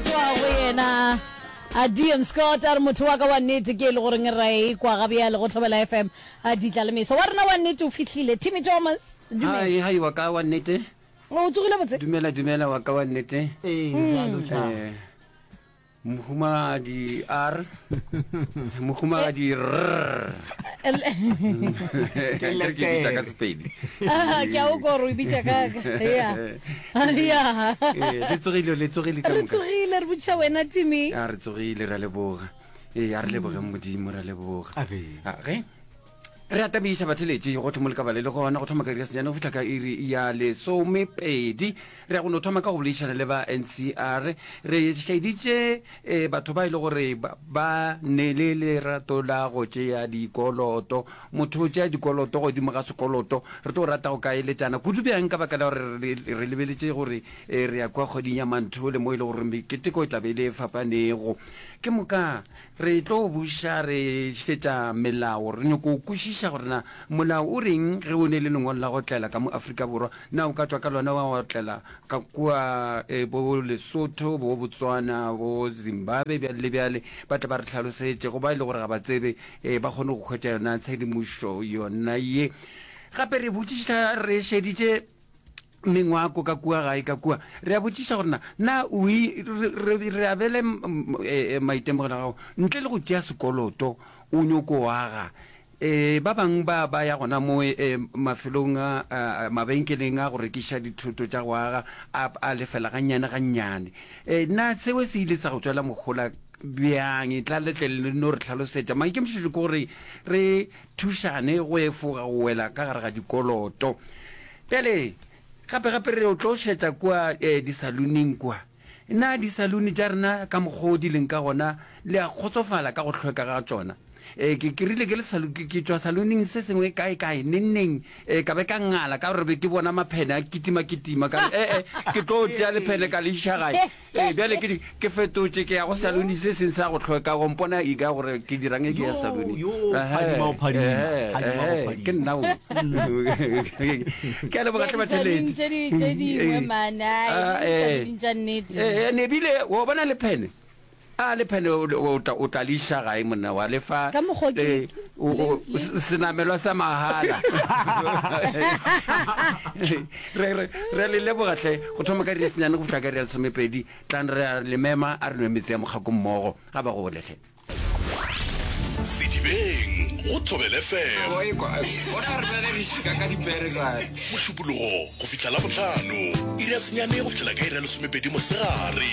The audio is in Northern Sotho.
tšwa go yena adm scott a re motho wa ka wa nnete ke e le goreng ra e kwa ga bjale go thobela fm a ditla le meso wa rena wa nnete o fihlile timmy thomas dumela hai hai wa ka wa nnete o tsogile botse dumela dumela wa ka wa nnete ee bjalo tša eh, mohumagadi a re mohumagadi ka sepedi ah, ke a o koro e bitša kaka re tsogile le tsogile re tsogile re botšha wena timi a re tsogile ra leboga ee a re lebogeng modimo ra leboga ge re atamisa batheletši go thomole ka bale le gona go thoma ka iri ya senyane go fitlha ka iri ya lesomepedi re ya go no thoma ka go boledišana le ba ncr re šaeditše eh, batho ba e le gore ba ne le lerato la go tšea dikoloto motho o tšea dikoloto godimo ga sekoloto re tlo rata go ka eletšana kudu bjang ka baka la gore re lebeletše gore eh, re ya kwa kgweding ya mantho le mo e le gore keteko e tlabe e le fapanego ke moka Re tlo buša re šetša melao. Re nyoko kwešiša gore na molao o reng ge o ne le lengwalo la go otlela ka mo Afrika Borwa, na o ka tšwa ka lona wa otlela ka kua e bo Lesotho, bo Botswana, bo Zimbabwe bjale le bjale. Ba tle ba re hlalosetše go ba e le gore ga ba tsebe e ba kgone go hwetša yona tshedimošo yona ye. Gape re botšiša re šeditše Mengwako ka kua gae ka kua, re a botšiša gore na, na o i, re, re, re abele m, m, e, e, maitemogelo a gago ntle le go tšea sekoloto. O nyoko aga. E, ba bangwe ba, ba ya gona mo, e, e, mafelong a, a, a, mabenkeleng a go rekiša dithoto tša go aga, a, a lefela gannyane gannyane. E, na seo se ile sa go tšwela mohola bjang? Etla le tle le no re hlalosetša. Maikemišetšo ke gore re, Thušane go efoga go wela ka gare ga dikoloto. Bjale, gape, gape re yo tlo šetša kua eh, disaloning kua. Na disaluni tša rena ka mokgoo di leng ka gona, le a kgotsofala ka go hlweka ga tšona? Eh, ke, ke rile ke le salo, ke, ke tšwa saloning se sengwe kae kae, nengneng, eh, ka be ka ngala ka gore be ke bona maphene a kitima-kitima, ka re, ee, ke tlo tšea lephene ka le iša gae, Ee, bjale ke di, ke fetotše, ke ya go saluni se seng sa go tlhoeka, o mpona eka gore ke dirang ge ke ya saluni. Yo, yo, Ehe, phadima go phadima, ehe, phadima go ehe, phadima. ke nna o. Ke a leboga hle batheletsi. Tše di- tše dingwe, Eh, man, ai, ah, di eh. saluni tša nnete. Eh, eh, nebile o bona le phene a le phene o- o tla- o tla le iša gae monna wa le fa Ka mokgwa o ke- eh, o- o- le- le- se- senamelwa sa mahala re re re le leboga hle go thoma ka resenyane go fihla ka real somepedi tlang re a le mema a re nwe metse ya mokgako mmogo ga ba gole hle sedibeng go thobele fm mošupologo go fihla la botlhano iri ya senyane go fihlela ka iri ya lesomepedi mosegare